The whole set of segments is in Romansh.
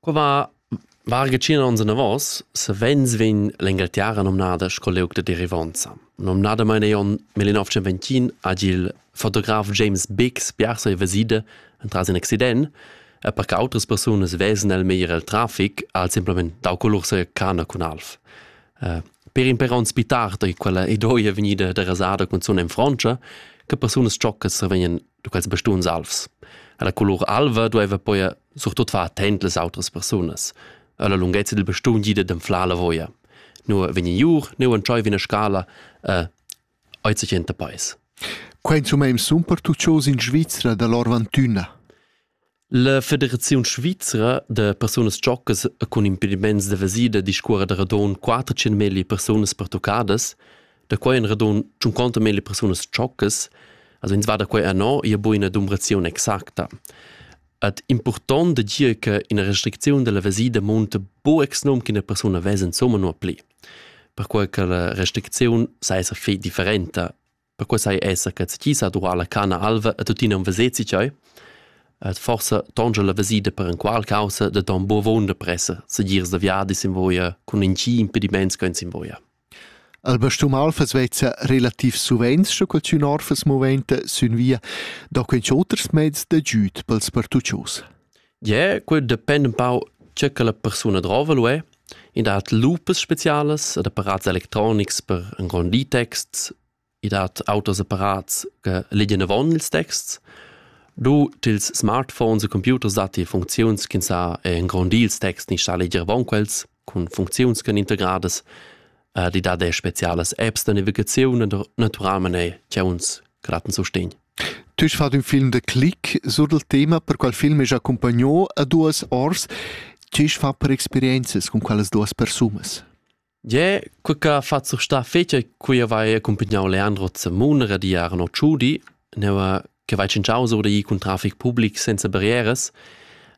Qua va varga tschient ons anavos savens vegn l'Engalterra nomnada sco liug da derivonza. Nomnadamain ei onn millennotschentventin hagi il fotograf James Biggs biars ei vesida entras in accident e per che autras persunas vesan el meglier el trafic ha el semplamein dau colur sia cana cun alv. Eh, per in per onns pli tard ei quella ei duei vegnida derasada cunzun en Frontscha che persunas tschoccas sa vegnan du quels bestuns alvs. La colur alva dueva poi surtut far attent las autras persunas. La lunghezza del bestun gida dem fla la voia. Nu vegni iur, nu entschoi vina scala, eh, ait sich enta pais. Quei insumma im sun per tuccios in Svizzera dall'Orvantüna. La Federaziun svizra da persunas tschoccas e cun impediments da vesida discuora da radon 400 milli persunas pertuccadas, da quai en radon 50 milli persunas tschoccas, also ins va da quai anno, ia bo ina dumbrazione exacta. Ad important da dir che ina restricziun della vesida monta bo ex num che una persona vesa insomma no pli. Perquai che la restricziun sa esser fei differenta Perquei sai esser che ti sa durar la cana alva e tuttina un vesezi tgei? Et forse tonge la vesida per en qual causa de ton buo vonda pressa, se girs da viadi sin voia cun in ci impediments che sin voia. Al bastum alfas vezza relativ suvenz sco cul tün orfas moventa sün via da quens oters mezs da giüt pels partuccios. Yeah, quel depend un pau tge che la persuna drova lu è. I dat lupas specialas ed apparats electronics per engrondir texts. I dat auters apparats che legien avon ils texts. Du tils smartphones e computers datti funcziuns ch'ins sa engrondir ils texts ni sa leger avon quels. cun funcziuns ch'en integradas. Uh, di dat er spezialas apps da navigaziun e naturalmain er chiauns gratten sustegn. Tu hast fatto un film de Click sur il tema, per qual film è accompagnato a duas ors. Tge fa per experiences con quelles duas personas? Je, quella fazzo sta fece, cui vai accompagnato Leandro Zemuna, di Arno Ciudi, ne va che vai tschintschau sur da ir cun traffic public senza barrieras,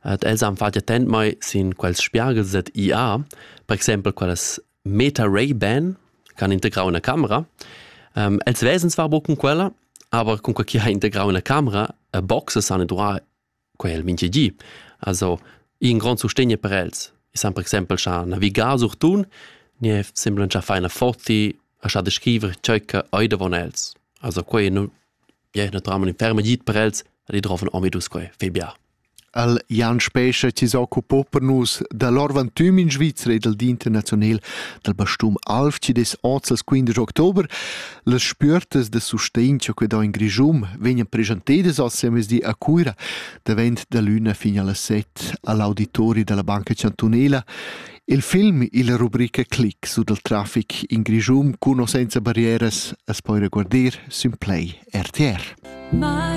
et els han fatg attent mai sin quels spiagels et IA, per exempel quellas Meta Ray Ban, can integrau una camera. Um, els vesens war bo cun quella, aber con quel chi ha integrau una camera, boxes han duà quei el mintgi gi. Also in grond sustegn per els. E san per exempel scha navigar sur tun nie semblan cha faina forti a scha descriver ciò che ei davon els. Also quei nu ja naturalmente in ferma git per els ad i droven omidus quei fe bia. Al Jan Spescha ci s'occupo per nus da l'orvantüm in Svizzera e dal di internazional dal bastum Alf ci des 11 15 oktober Las spüertas da sustegn cha que do in Grischun vegnan preschantedas al siamezdi a Cuira davent da l'üna fin a las set a l'auditori da la Banca Chantunela. Il film illa rubrica Click su dal trafic in Grischun cun o senza barrieras as poira guardir sün Play RTR. My